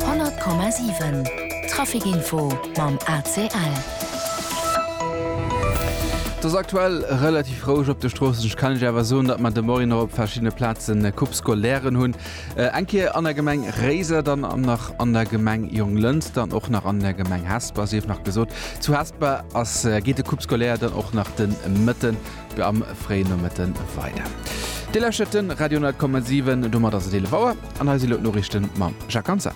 100,7 Traficinfo mam ACL. Et ass aktuell relativ roueg op de Stroossen. Ech kann Iech awer soen, datt mer de Moien och op verschiddene Plazen Coupe Scolairen hunn. Eng Kéier an der Gemeng Réiser, dann nach an der Gemeng Jonglënster an och nach an der Gemeng Hesper. Sief nach gesot, zu Hesper ass, geet de Coupe Scolaire dann och nach de Mëtten Am fréien Nomëtte weider. Dir lauschtert de Radio 10,7. Domat ass et 11 Auer an hei si elo d'Noriichte mam Jacques Hansen.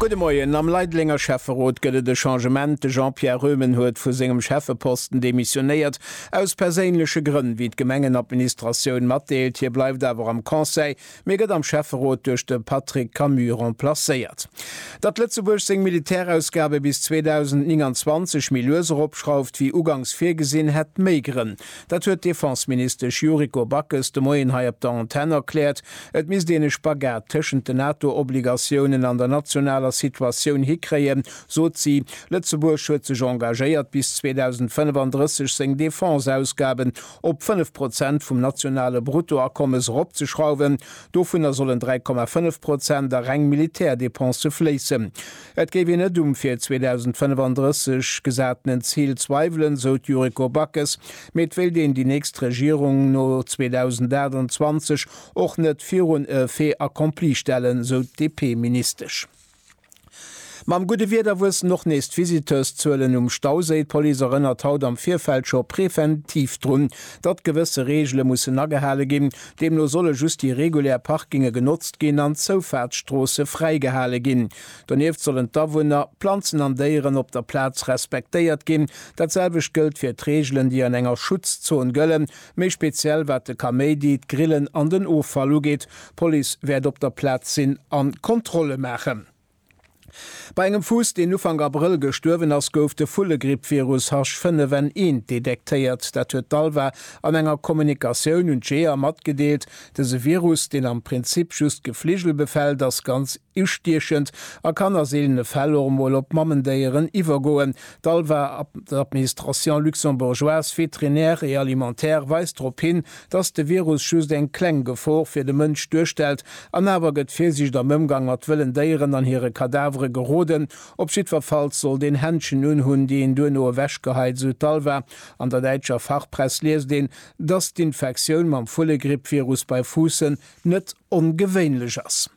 Gudde Moien. Am Leidelenger Schäfferot gëtt et e Changement. De Jean-Pierre Röhmen huet vu sengem Schäffeposten demissionéiert, aus perséinleche Grënn, wéi d'Gemengenadministratioun matdeelt. Hie bleift awer am Conseil, mee gëtt am Schäfferot duerch de Patrick Camus remplacéiert. Datt Lëtzebuerg seng Militärausgabe bis 2029 méi lues eropschrauft wéi ugangs virgesinn, hätt méi Grënn. Dat huet d'Defenseministesch Yuriko Backes de Moien hei op der Antenn erkläert. Et misst een e Spagat tëschent den NATO-Obligatiounen an der nationaler Situatioun hikréien, sot si. Lëtzebuerg huet sech engagéiert, bis 2035 seng Defenseausgaben op 5 Prozent vum nationale Bruttoakommes eropzeschrauwen, dovunner sollen 3,5 Prozent a reng Militärdepensë fléissen. Et géif een net um fir 2035 gesatenen Zil zweiwelen, sou d'Yuriko Backes, mee et wéilt een déi nächst Regierung no 2028 och net virun e Fait accompli stellen, sou d'DP-Ministesch. Mam gudde Wieder wuessen och nees d'Visiteurszuelen um Stauséi. D'Police erënnert haut am Virfeld scho preventiv drun, datt gewësse Reegele mussen agehale ginn. Deemno solle just déi regulär Parkinge genotzt ginn an d'Zoufaartsstroosse fräigehale ginn. Donieft sollen d'Awunner, Planzen an Déieren op der Plaz respektéiert ginn. Dat selwecht gëllt fir d'Reegelen, déi an enger Schutzzon gëllen, méi speziell wat de Kaméidi, d'Grillen an den Offall ugeet. D'Police wäert op der Plaz sinn a Kontrolle maachen. Bei engem Fuuss, deen Ufank Abrëll gestuerwen ass, gouf de Vullegrippvirus H5N1 detektéiert. Dat huet d'ALVA an enger Kommunikatioun un d'Jeeër matgedeelt. Dëse Virus, deen am Prinzip just Gefligel befält, ass ganz. Ustiechend a kann a seelene Fäll och emol op Mammendéieren iwwergoen. D'ALVA, Administration luxembourgeoise vétérinaire et alimentaire, weist drop hin, dass de Virus just eng kleng Gefor fir de Mënsch duerstellt. An awer gëtt Virsiicht am Ëmgang mat wëllen Déieren an hire Kadavere geroden. Op jiddwerfalls sollt een Händschen unhunn, déi een duerno ewechgeheit, esou d'ALVA. An der däitscher Fachpress liest een, dass d'Infektioun mam Vullegrippvirus bei Fuussen net ongewéinlech ass.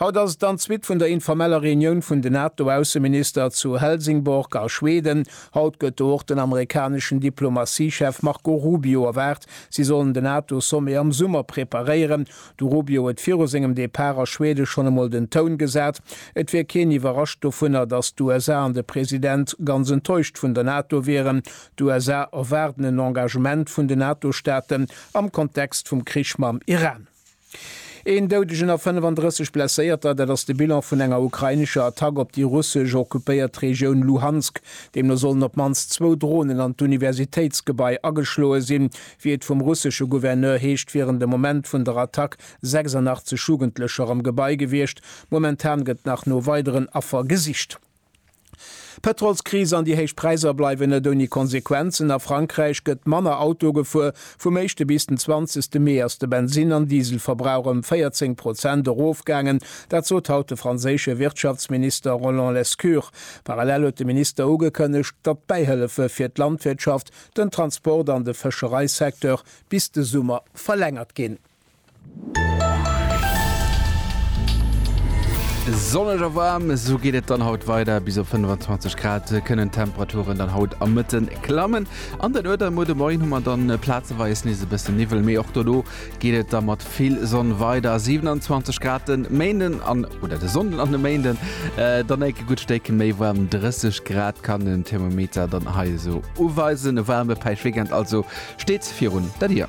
Haut ass et an d'Suite vun der informeller Reunioun vun den NATO-Ausseminister zu Helsingborg a Schweden. Haut gëtt do och den amerikaneschen Diplomatiechef Marco Rubio erwaart. Si sollen den NATO-Sommet am Summer preparéieren. De Rubio huet viru sengem Depart a Schwede schonn emol den Toun gesat, et wier keen iwwerrascht dovunner, datt d'USA an de President ganz enttäuscht vun der NATO wieren. D'USA erwaarden en Engagement vun den NATO-Staaten am Kontext vum Krich mam Iran. Een Doudegen a 35 Blesséierter, dat ass de Bilan vun enger ukrainescher Attack op déi russesch occupéiert Regioun Luhansk. Deemno sollen op d'mannst zwou Dronen an d'Universitéitsgebai ageschloe sinn. Wéi et vum russesche Gouverneur heescht, wieren de Moment vun der Attack 86 Jugendlecher am Gebai gewiescht. Momentan gëtt nach no weideren Affer gesicht. D'Pëtrolskris an déi héich Präisser bleiwen net ouni Konsequenzen. A Frankräich gëtt manner Auto gefuer. Vum éischte bis den zwanzegste Mee ass de Bensinn an Dieselverbrauch ëm 14 Prozent erofgaangen. Dat sot haut de franséische Wirtschaftsminister Roland Lescure. Parallel huet de Minister ugekënnegt, datt d'Bäihëllefe fir d'Landwirtschaft, den Transport an de Fëschereisecteur bis de Summer verlängert ginn. Sonneg a waarm, esou geet et dann haut weider. Bis op 25 Grad kënnen d'Temperaturen dann haut am Mëtte klammen. An der Nuet a muer de Moien hu mer dann plazeweis nees e bësse Niwwel, mee och dono geet et da mat vill Sonn weider. 27 Grad den Méinden an oder de Sonnden an de Méinden dann enk e gutt Stéck méi waarm. 30 Grad kann den Thermometer dann hei esou uweisen. E waarme Päischweekend also steet virun der Dier.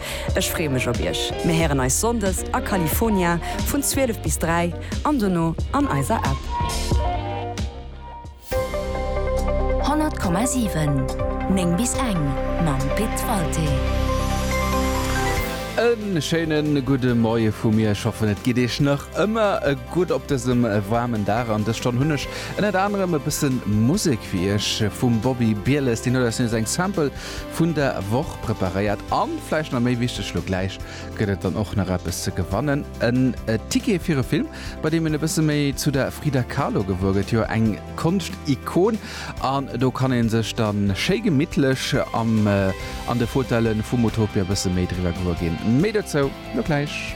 Ech freeë mech op iech. Mir héieren eis Sonndes a California vun 12 bis 3 an dono an eiser App. 100,7 9 bis eng mam Pit Walté. E schéine gudde Moie vu mir. Ech hoffen et geet iech nach ëmmer gutt op dësem waarmen Dag. An dës Stonn hunn ech ënnert anerem e bësse Musek fir iech vum Bobby Bieles. Deen huet eis nees eng Sample vun der Woch preparéiert. An vläicht nach méi wichteg, lo gläich gëtt et dann och nach eppes ze gewannen, en Ticket fir e Film, bei deem een e bësse méi zu der Frida Kahlo gewuer gëtt, jo eng Konschtikon. An do kann ee sech da schéi gemittlech am an de Fauteuile vum Utopia e bësse méi driwwer gewuer ginn. Méi dozou lo gläich.